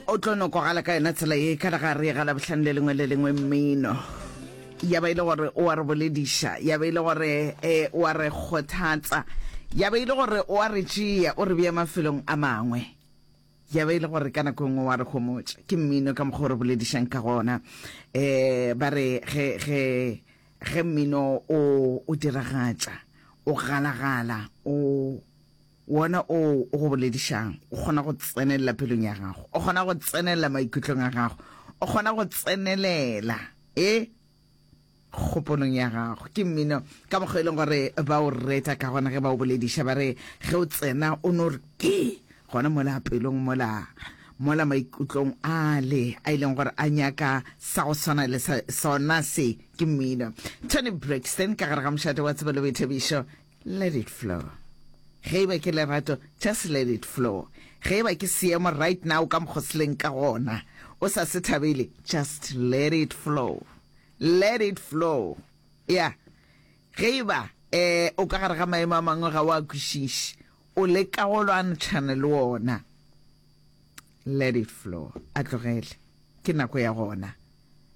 o tlo no kwagala ka yona tsela ye ka re ga re e gala bohlane le lengwe le lengwe mmino ya ba e le gore o a re bolediša ya ba e le gore eh, o a re kgothatsa ya ba e le gore o a re tšea o re bea mafelong a mangwe ya ba e le gore ka nako e nngwe wa re gomotša ke mmino ka mokgwa o re boledišang ka gona um ba re ge ge ge mmino o o diragatša o galagala o Wona oo o go boledišago o kgona go tsenelela pelong ya gago, o kgona go tsenelela maikutlong a gago, o kgona go tsenelela e kgopolong ya gago. Ke mmino ka mokgwa e leng gore ba o reta ka gona ge ba o bolediša, ba re ge o tsena o no re ke gona mola pelong mola mola maikutlong ale a e leng gore a nyaka sa go swana le sona se. Ke mmino Toni Braxton ka gare ga mošate wa tsebo le boithabišo. Let it flow. Ge e ba ke lerato, just let it flow. Ge e ba ke seemo right now ka mokgo se leng ka gona, o sa se thabele, just let it flow. Let it flow. Yeah. Ge e ba eh, o ka gare ga maemo a mangwe ga o a kwešiše, o leka go lwantšhana le ona, let it flow. A tlogele. Ke nako ya gona.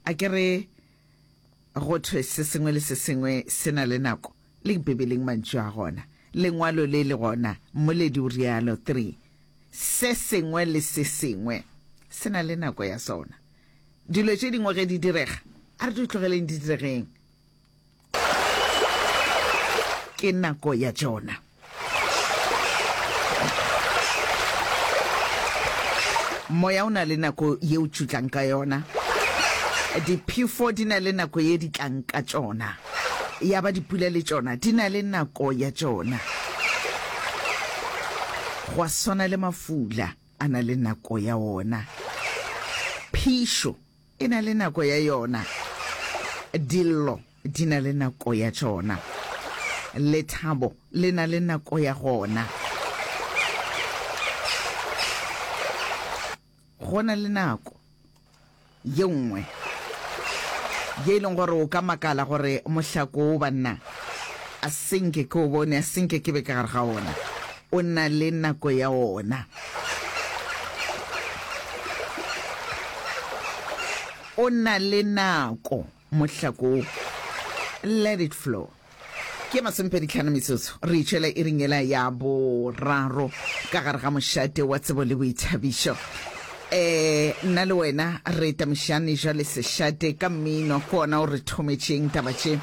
A ke re Go thwe se sengwe le se sengwe se na le nako, le Bibeleng mantšu a gona. Lengwalo le le gona, Mmoledi o realo, 3, Se sengwe le se sengwe se na le nako ya sona. Dilo tše dingwe ge di direga, a re di tlogeleng di diregeng. Ke nako ya tšona. Moya o na le nako ye o tšutlang ka yona. Diphefo di na le nako ye di tlang ka tšona. Ya ba dipula le tšona di na le nako ya tšona. Gwa swana le mafula a na le nako ya ona. Phišo E na le nako ya yona. Dillo di na le nako ya tšona. Lethabo le na le nako ya gona. Go na le nako ye nngwe ye e leng gore o ka makala gore mohlako wo banna a senke ke o bone, a senke ke be ka gare ga ona. o na le nako ya ona. O na le nako mohlako wo. Let it flow. ke masomepedi tlhano metsotso re itšwela e ringela ya boraro ka gare ga mošate wa tsebo le boithabišo um nna le wena re tamišane jwa le sešate ka mmino go ona o re thometšeng taba tše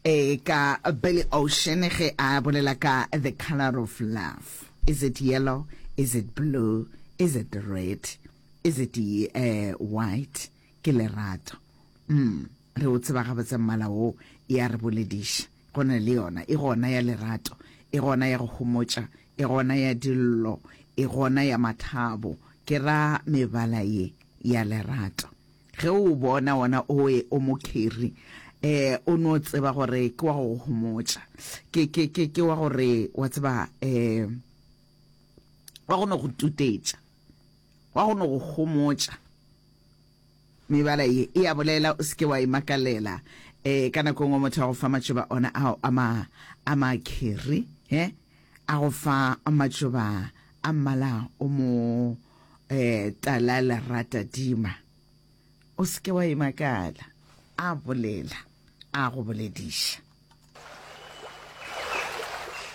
Ee, ka Billy Ocean ge a bolela ka The Colour of Love. Is it yellow? Is it blue? Is it red? Is it eh, white? Ke lerato. Mm, re o tseba gabotse mmala wo, e a re bolediša. Go na le yona, e gona ya lerato, e gona ya go homotša, e gona ya dillo, e gona ya mathabo, ke ra mebala ye ya lerato. Ge o o bona, wona owe o mokhiri, e, o no tseba gore ke wa go go homotša. Ke, ke, ke, ke wa gore, wa tseba, e, wa go no go tutetša, wa go no go homotša. Mebala ye e a bolela, o se ke wa e makalela. E, ka nako e nngwe motho a go fa matšoba ona ao a ma, a makhiri, he, a go fa matšoba a mmala o mo, Eh, tala lerata dima. O seke wa imakala. A bolela. A go bolediša.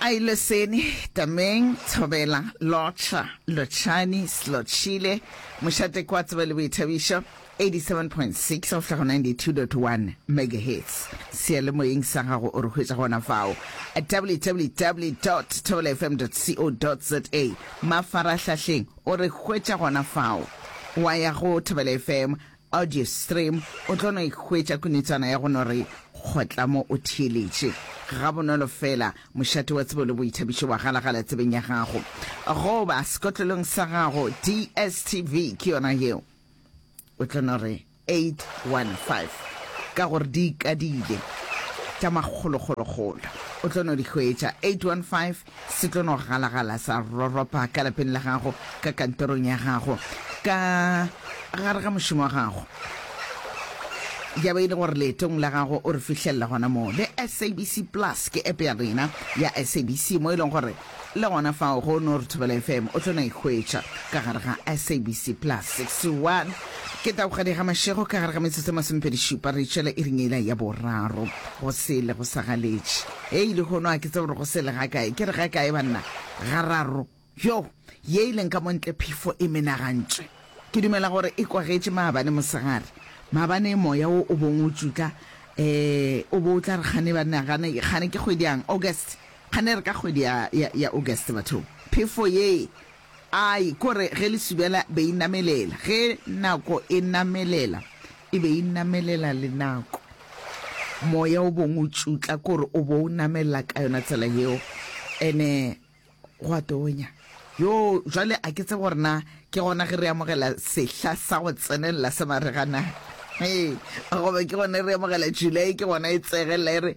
A ile seni, tameng, thobela, lotšha, lotšhani, slotšhile, mošate kwa tsebe le boithabišo. 87.6 go fihla go 92.1 megahertz seyalemoyeng sa gago o re hwetša gona fao at www thobelafm co za mafarahlahleng o re hwetša gona fao wa ya go thobela fm audio stream o tlo no ihwetša kunetswana ya go no re kgotla mo o theeletše ga bonolo fela mošate wa tsebo le boithabišo wa galagala tsebeng ya gago goba sekotlolong sa gago dstv ke yona yeo o tla no re 815 ka gore di ikadile tša makgolokgolokgolo o tla no di hwetša 815 se tla no galagala sa roropa ka lapeng la gago ka kantorong ya gago ka gare ga mošomo wa gago ya ba e le gore leetong la gago o re fihlelela gona moo le sabc plus ke app ya rena ya sabc mo e leng gore Le gona fao go no re Thobela FM o tlo na ikhwetša ka gare ga SABC Plus 61. Ke Tabogadi ga Mashego ka gare ga metsotso e masomepedi šupa re tšwela iring ela ya boraro. Go sele go sa galetše. Hei lehono a ke tsebe gore go sele ga kae. Ke re ga kae banna? Gararo. Yo, ye e leng ka mo ntle phefo e menagantše. Ke dumela gore e kwagetše maabane mosegare. Maabane moya wo o bong o tšutla. Eh, o bo o tla re kgane banna, gane, kgane ke kgwedi yang? August. Phaner ka kgwedi ya, ya, ya August, bathong. Phefo ye! Ai, kore ge lesubela be e namelela, ge nako e namelela, e be e namelela le nako. Moya o bong o tšutla, kore o bo o namelela ka yona tsela yeo. Ene gwa tonya. Yoo, jwale a ke tsebe gore na ke gona ge re amogela sehla sa go tsenelela sa marega na. Hei, goba ke gona re amogela July, ke gona e tsegelela e re,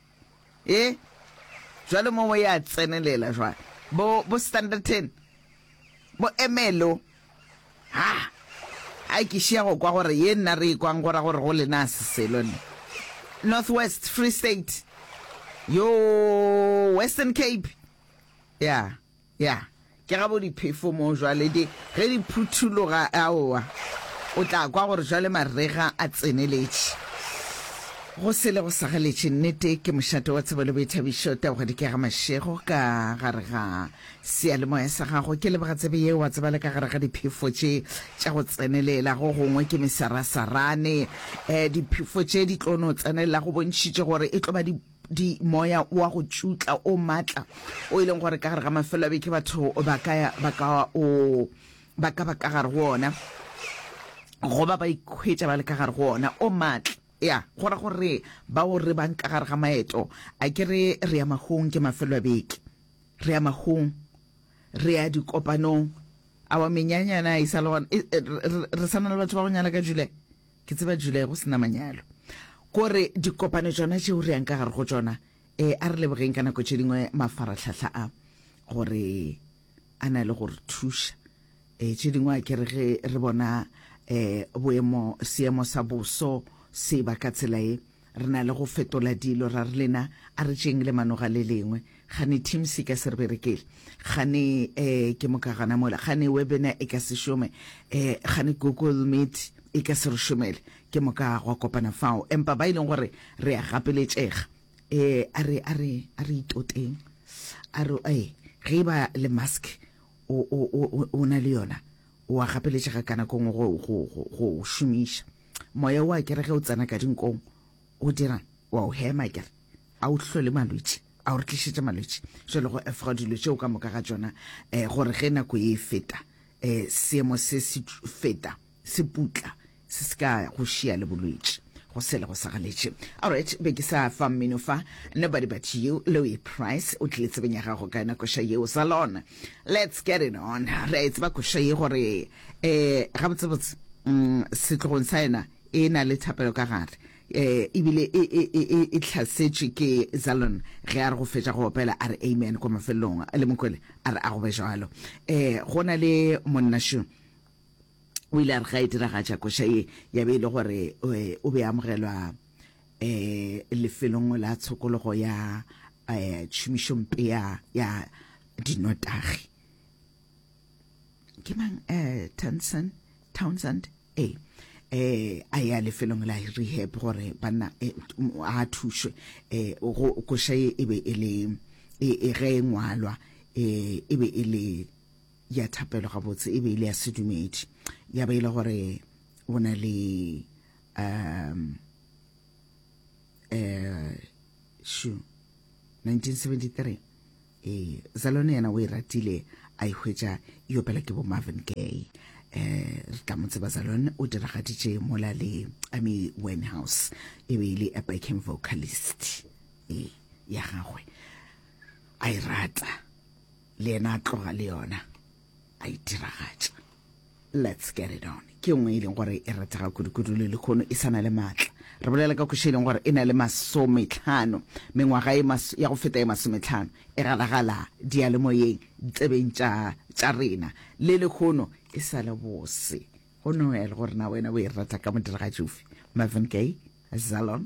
Ee, jwale mo ya tsenelela jwale. Bo, bo standard ten, bo emelo. Ha, ha ke šia go kwa gore ye nna re ikwang gora gore go lena se selo ne. Northwest, Free State, yo Western Cape, ya. Yeah. Ya, ke gabo diphefo moo jwale di, ge di phuthuloga, aowa, o tla kwa gore jwale marega a tseneletše. Go sele go sa galetše. Nnete, ke mošate wa tsebo le boithabišo, taoga dikega mašego ka gare ga seyalemoya sa gago. Ke leboga tsebe yeo, wa tseba, le ka gare ga diphefo tše tša go tsenelela go gongwe ke mesarasarane. Eh, diphefo tše di tlo no tsenelela go bontšhitše gore e tlo ba di di moya wa go tšutla o matla o e leng gore ka gare ga mafelo a beke batho ba ka ba ka o ba ka ba ka gare go ona goba ba ikhwetša ba le ka gare go ona o matla ya gora gore ba o re bang ka gare ga maeto a ke re re ya magong ke mafelo a beke re ya magong re ya dikopanong awa menyanyana e sa le gona e, e, re sana le batho ba go nyala ka jule Ke tseba July go se na manyalo. Ko re dikopano tšona tšeo re yang ka gare go tšona, e, a re lebogeng ka nako tše dingwe mafaratlhahla a, gore a na le go re thuša. E, tše dingwe a ke re ge re bona e, boemo, seemo sa boso se ba ka tsela e, Re na le go fetola dilo, ra re lena a re tšeeng lemano ga le lengwe. Gane Teams e ka se re berekele, gane eh ke moka gana mola, gane Webinar e ka se šome, eh gane Google Meet e ka se re šomele, ke moka gwa kopana fao. Empa ba e leng gore re a gapeletšega, eh a re a re a re itoteng, a re eh ge e ba le mask o o o o na le yona, o a gapeletšega ka nako nngwe go go go go o šomiša. Moya wa kere ge o tsena ka dinkong o dirang wa o hema kere a o hlole malwetši a o re tlišetše malwetši jalo go efoga dilo tšeo ka moka ga tšona um gore ge nako e feta um seemo se se feta se putla se se ka go šia le bolwetši go sele go sagaletše alright be ke sa fa mmino fa nobody but you louis price o tlile tsebeng ya gago ka yona koša yeo zalon Let's get it on. Re a e tseba koša ye gore um gabotsebotse um setlogong sa yena e na le thapelo ka gare eh ebile e e e e, e tlhasetše ke Zalon ge a re go fetša go opela a re amen kwa mafelelong le mokwele a re a go be jalo eh go na le monnasho o ile a re ga e diragatša koša ye ya be e le gore eh, o be a amogelwa eh, lefelong la tshokologo ya eh, tšhomišompe ya, ya dinotagi ke mang eh, Townsend, Townsend eh eh a ya lefelong la rehab gore banna eh, a thušwe eh go koša e, e be e le e, e ge e ngwalwa eh e be e le ya thapelo gabotse e be e le ya sedumedi ya ba e le gore o na le um eh shu 1973 eh zalone yena o e ratile a e hwetša e opela ke bo marvin gay eh re tla mo tseba zalone o diragaditše mola le amy winehouse e be e le a backing vocalist eh ya gagwe a e rata le yena a tloga le yona a e diragatša let's get it on ke nngwe e leng gore e ratega kudukudu le lekgono e sana le maatla re bolela ka khoši e leng gore e na le masometlhano mengwaga e ya go feta e masometlhano e galagala dialemoyeng tsebeng tša rena le lekgono e sa le bose go noel gore na wena o e rata ka modiragatši ofe marvin gay zalon